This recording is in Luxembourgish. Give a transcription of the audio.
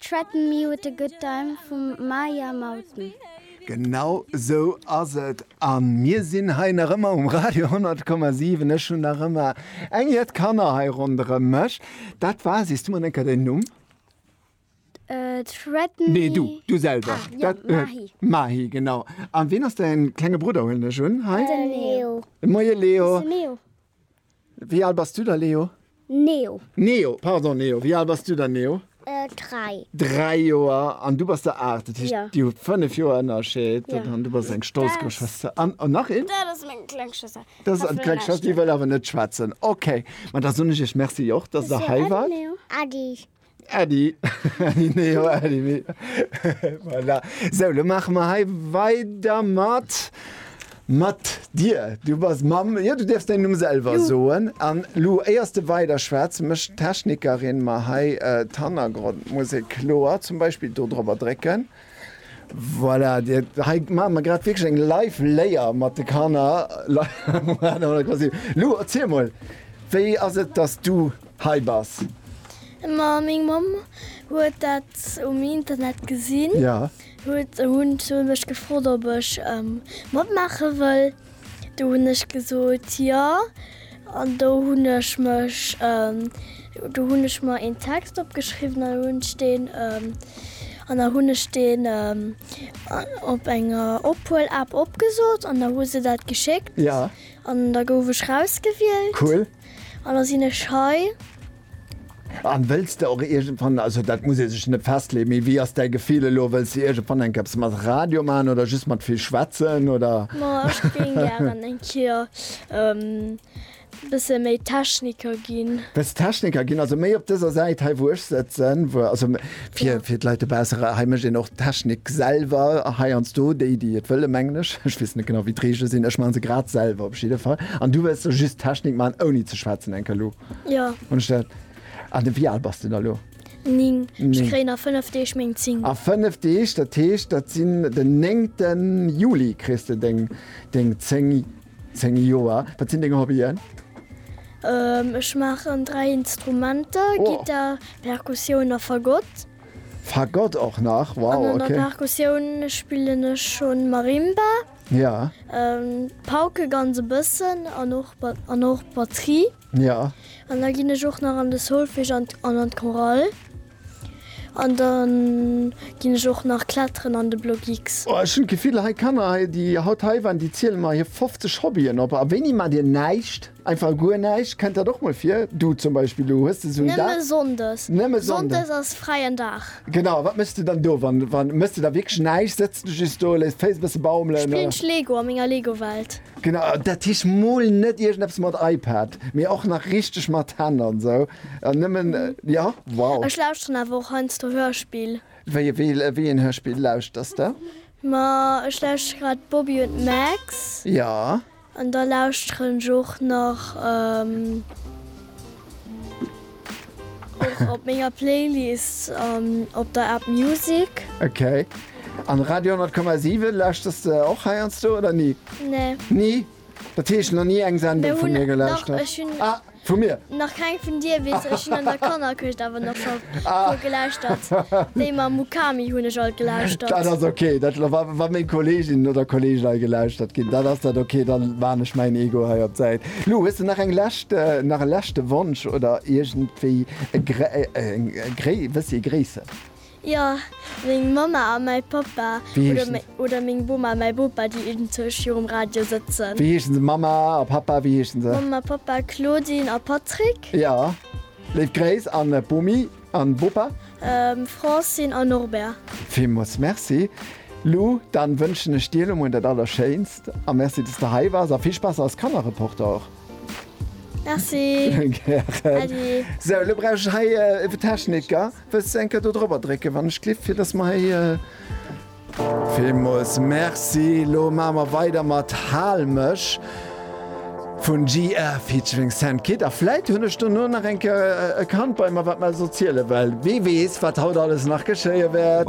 Threaten me with a good time vu Maya Mouten. Genau sou ass et an mir sinn hei nach ëmmer um Radio 100,7. Ech hunn nach ëmmer eng Jett Kanner hei ronderëm mech. Dat war, sees du mer eng Kéier däin Numm? Threaten me. Nee, du, du selwer. Ah, jo, Mahi. Mahi, genau. An ween ass däin klenge Brudder, huelen ech un, hei? Den Leo. Moie Leo. Wou ass de Leo? Wéi al bass du da, Leo? Neo. Neo, pardon, Neo. Wéi al bass du da, Neo? Dräi. Dräi Joer. An du bass der aacht. Dat heescht, Jo. dir hutt fënnef Joer Ënnerscheed. Jo. An du bass eng stolz Dës. Geschwëster. An, an nach een? Dat ass meng kleng Schwëster. Dat ass eis kleng Schwëster, déi wëll awer net schwätzen. Okay. Ma da soen ech iech Merci och, dass der hei waart. Adi. Äddi, Äddi, nee, jo, Äddi, mee, voilà. So, lo maache mer hei weider mat, mat dir. Du bass Mamm, jo, du däerfs däin Numm selwer soen. An lo, éiers de weider schwätz, mécht d'Technikerin mer hei d'Hannergrondmusek kloer, zum Beispill do drop erdrécken. Voilà, hei maache mer grad wierklech eng Live-Léier mat de Kanner. Lou, erziel mol, wéi ass et, datt s du hei bass? Ma meng Mamm huet dat um Internet gesinn. Ja. Huet, hunn se mech gefrot, ob ech matmaache wëll. Do hunn ech gesot jo an do hunn ech mech do hunn ech mer een Text opgeschriwwen an hunn ech deen an da hunn ech deen op enger Ophuelapp opgesot an da hu se dat geschéckt an da gouf ech rausgewielt an da sinn ech hei. An wëlls de och iergendwann, also dat muss ee sech net festleeën, mee wéi ass däi Gefill elo, wëlls de iergendwann eng Kéiers mat Radio maachen oder just mat vill schwätzen oder? Ma ech géing gären eng Kéier bësse méi Techniker ginn. Wëlls Techniker ginn, also méi op dëser Säit hei wou ech sëtzen, wou also fir fir d'Leit dobausse, hei mécht een och Technik selwer heiansdo, déi déi et wëllen mengen ech, ech weess net genau wéi d'Reegele sinn, ech maache se grad selwer op jidde Fall. An du wëlls elo just Technik maachen ouni ze schwätzen enk elo? Jo. Hun ech dat? An de wéi al bass de da lo? 9. Ech Néng. kréien a 5 Deeg meng 10. A 5 Deeg, dat heescht, dat sinn den 9. Juli kriss de deng deng 10, 10 Joer. Wat sinn deng Hobbyen? Ähm, ech maachen 3 Instrumenter, Oh. Gittar, Perkussioun a Fagott. Fagott och nach? An Wow, an der okay. Perkussioun spillen ech schonn Marimba. Ja. Pauken ganz e bëssen an och an och Batterie. Ja. An da ginn ech och nach an de Solfège an an an d'Chorale. An dann ginn ech och nach Kletteren an de Bloc X. Oh ech hunn d'Gefill hei Kanner hei déi haut hei waren déi ziele mer hir 50 Hobbyen op. A wéini maacht Dir näischt? Einfach guer näischt, kennt dat och mol vir? Du zum Beispill, du hues de sou en Dag? Nëmme Sonndes. Nëmme Sonndes? Sonndes ass fräien Dag. Genau, a wat méchs du dann do? Wann, wann méchs du da wierklech näischt? Sëtz de just do, léiss d'Féiss e bësse baumelen? Spillen ech Lego a menger Lego-Welt. Genau, dat heescht mol net iergendeppes mat iPad, mee och nach richteg mat Hänn an esou an nëmmen, jo, wow. Ech lauschteren awer och heiansdo Hörspill. Wéi, wéi een Hörspill lauschters de? Ma ech lauschteren grad Bobby und Max. Jo. An da lauschteren ech och nach op menger Playlist an op der App Music. Ok. An Radio 10,7 lauschters de och heiansdo oder ni? Nee. Ni? Dat heescht, nach ni eng Sendung vu mir gelauschtert? Ech hunn. Vu mir? Nach keng vun dir, weess ech. Ech hunn an der Kannerkëscht awer nach scho puer gelauschtert. Déi mam Mukami hunn ech alt gelauschtert. Dat ass ok. Dat, wa meng Kolleeginnen oder Kolleegen hei gelauschtert ginn, dann ass dat ok. Da maan ech mäin Ego hei op d'Säit. Lou, hues de nach eng lescht, nach e leschte Wonsch oder iergendwéi e gréi, e gréi, wëssi, e gréisse? Jo, meng Mamma a mäi Pappa oder meng Boma a mäi Bopa, déi iergendwou virum Radio sëtzen. Wéi heeschen se? Mamma a Pappa, wéi heeschen se? Mamma a Pappa, Claudine a Patrick. Jo, léif Gréiss an d'Bomi an de Bopa. Francine a Norbert. Villmools Merci, Lou. Dann wënschen ech dir elo mol dat Allerschéinst a Merci, dass de hei wars a vill Spaass als Kannerreporter och. Merci. Gären. Adi. Sou, elo brauch ech hei e Techniker. Wëlls de eng Kéier do drop drécken wann ech d'Lift fir dass mer héi. Villmools Merci. Lo maache mer weider mat Hal mech vun GR featuring Saint Kid a vläit hunn ech dono nach eng Kéier e Kand bei mer wat mer esou ziele well. Wee weess wat haut alles nach geschéie wäert.